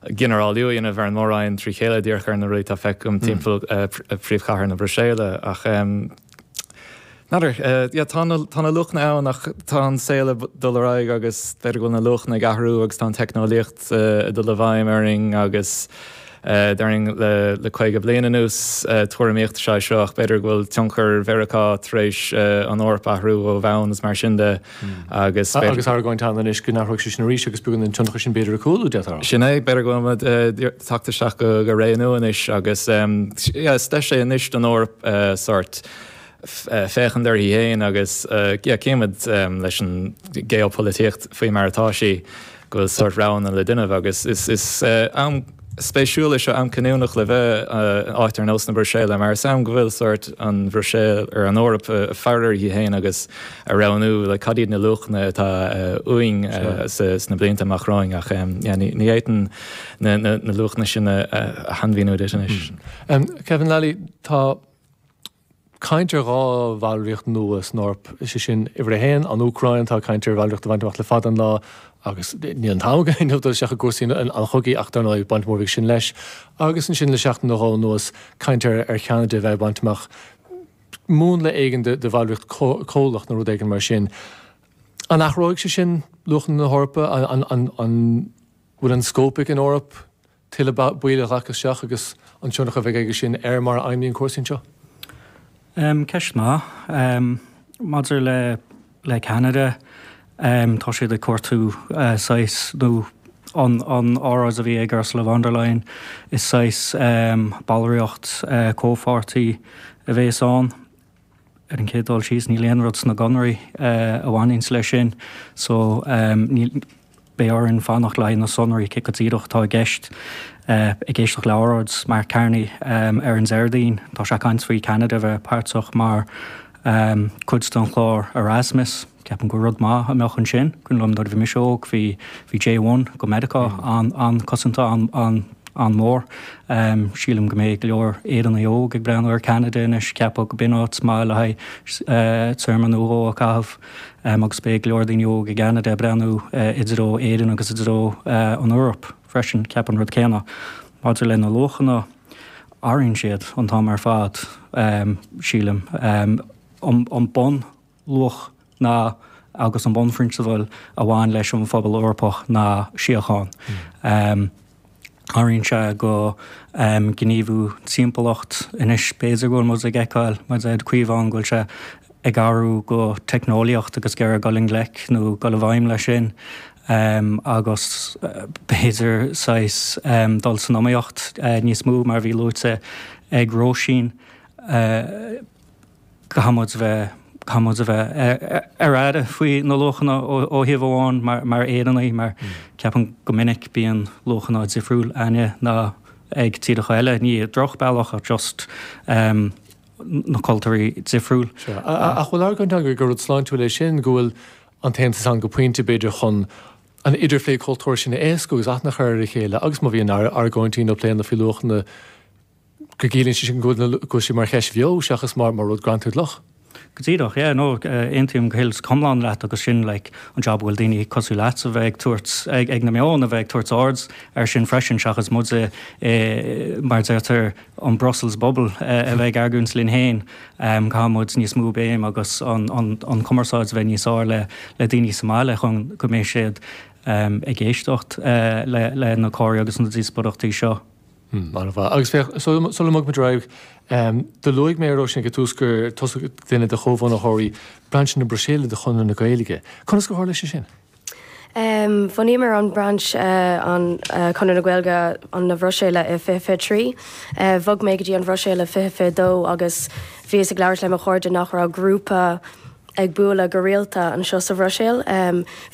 ginearálú a dhéanamh ar mhórán trí chéile díreach ar na rudaí atá feicthe agam timpeall phríomhchathair na Bruiséile ach n'fheadar, yeah tá na tá na luachanna ann ach tá an saol ag dul ar aghaidh agus b'fhéidir go bhfuil na luachanna ag athrú agus tá an teicneolaíocht ag dul i bhfeidhm orainn agus déarfainn le caoga bliain anuas tuairimíocht is ea é seo ach b'fhéidir go bhfuil tionchar Mheiriceá tar éis an Eoraip a athrú ó bhonn is mar sin de. Agus argóint ann anois go n-athróidh sé sin arís agus beagán an tionchar sin b'fhéidir ag cúlú, deirtear. Sin é, b'fhéidir go bhfuil muid tagtha isteach go ré nua anois agus yeah is deis é anois don Eoraip sort féachaint uirthi féin agus yeah cífimid leis an gheopholaitíocht faoi mar atá sí. go bhfuil sórt roghanna le déanamh agus is am spéisiúil é seo, am cinniúnach le bheith in áit ar nós na Bruiséile mar is am go bhfuil sórt an Bhruiséil nó an Eoraip ag faire uirthi féin agus ag roghnú le cad iad na luachanna atá uainn sna blianta amach romhainn ach ní fhéadfainn na luachanna sin a shainmhíniú duit anois. Kevin, tá caint ar dhá bhallraíocht nua san Eoraip, is é sin, uimhir a haon, an Úcráin, tá caint ar bhallraíocht a bhaint amach le fada an lá agus níl an t-am againn dul isteach i gcúrsaí an chogaidh ach, dar ndóigh, baint mhór aige sin leis. Agus ansin, le seachtain nó dhó anuas, caint ar Cheanada a bheith ag baint amach múnla éigin de bhallraíocht comhlach nó rud éigin mar sin. An athróidh sé sin luachanna na hEorpa? An bhfuil an scóip ag an Eoraip? Tuilleadh ball a ghlacadh isteach agus an tionchar a bheidh aige sin ar mar a fheidhmíonn cúrsaí anseo? Ceist mhaith. Maidir le Ceanada, tá siad ag cuartú saghas, nó an óráid a bhí ag Ursula von der Leyen, is saghas ballraíocht comhpháirtí a bhéas ann. Ar an chéad dul síos níl aon rud sna conarthaí a bhaineanns leis sin so níl, beidh orainn fanacht le haghaidh na sonraí céard go díreach atá i gceist. Ag éisteacht le óráid Mark Carney ar an Déardaoin tá sé ag caint faoi Cheanada a bheith páirteach mar chuid den chlár Erasmus. Ceapaim gur rud maith a bheadh ansin, go nuair a bhí mise óg bhí bhí J-one go Meiriceá an- an-choitianta an- an- an-mhór. Sílim go mbeidh go leor Éireannaigh óga ag breathnú ar Ceanada anois ceapadh go mbeadh an áit maith le haghaidh téarma nó dhó a chaitheamh agus beidh go leor daoine óga i gCeanada ag breathnú i dtreo Éireann agus i dtreo an Eoraip freisin. Ceapaim an rud céanna maidir le na luachanna athraíonn siad an t-am ar fad sílim. An bun. luach ná agus an bunphrionsabail a bhain leis an phobal Eorpach ná síocháin. Áiríonn sé gníomhú timpeallacht. Anois b'fhéidir go bhfuil muid ag feiceáil, muid ag caoineadh go bhfuil sé ag athrú go teicneolaíocht agus ag iarraidh dul i ngleic nó dul i bhfeidhm leis sin agus b'fhéidir saghas dul in iomaíocht níos mó mar a bhí luaite ag Róisín. Caithfimid a bheith, caithfimid a bheith ar aire faoi na luachanna ó thaobh amháin mar Éireannaigh mar ceapaim go minic bíonn luachanna difriúil againn ná ag tíreacha eile, ní i droch bealach ach just na cultúirí difriúil. Sea. Ach bhfuil argóint ann gur rud sláintiúil é sin, go bhfuil an tAontas ann go pointe b'fhéidir chun an idirphlé cultúir sin a éascú agus aithne a chur ar a chéile agus má bhíonn argóintí nó pléanna faoi luachanna go gciallaíonn sé sin go bhfuil na, go bhfuil sé mar cheist bheo seachas mar, mar rud greanta i gcloch. Go díreach, yeah, no, aontaím go hiomlán leat agus sin, like, an job a bhfuil daoine cosúil leat a bheith ag tabhairt, ag, ag na meáin a bheith ag tabhairt aird air sin freisin seachas muid i, i, mar a deirtear, an Brussels bubble a bheith ag argóint linn féin, ehm, caithfidh muid níos mó béim agus an, an, an chumarsáid a bheith níos fhearr le, le daoine sa mbaile chun go mbeidh siad, ehm, ag éisteacht, eh, le, le na comhráití agus na díospóireachtaí seo. An-mhaith. Agus féach, sula mbogann muid ar aghaidh, do luaigh mé a Róisín ag an tús gur tusa duine de chomhbhunaitheoirí Brainse na Bruiséile de Chonradh na Gaeilge. Conas gur tharla sé sin? Bhunaíomar an Brainse de Chonradh na Gaeilge na Bruiséile i 2023. Bhog mé go dtí an Bhruiséil i 2022 agus bhíos ag labhairt le mo chairde nach raibh grúpa ag bualadh go rialta anseo sa Bhruiséil.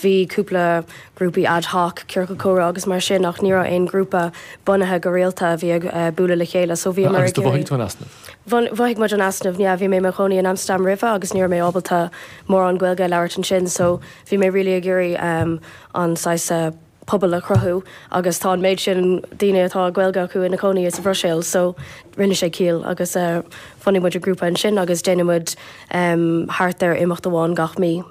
Bhí cúpla grúpaí ad hoc, ciorcal comhrá agus mar sin ach ní raibh aon ghrúpa bunaithe go rialta a bhí ag bualadh le chéile. So bhíomar ag. Agus do mhothaigh tú an easnamh? Mhothaigh muid an easnamh, yeah. Bhí mé i mo chónaí in Amsterdam roimhe agus ní raibh mé ábalta mórán Gaeilge a labhairt ansin so bhí mé really ag iarraidh an saghas pobal a chruthú agus tá an méid sin daoine atá Gaeilge acu ina cónaí sa Bhruiséil so rinne sé ciall agus bhunaigh muid an grúpa ansin agus déanann muid thart ar imeacht amháin gach mí.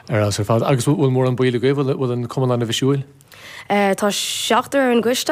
Sin ar fheabhas ar fad. Agus bhfuil mórán baill agaibh, bhfuil an cumann ana-bhisiúil? Tá seachtar ar an gcoiste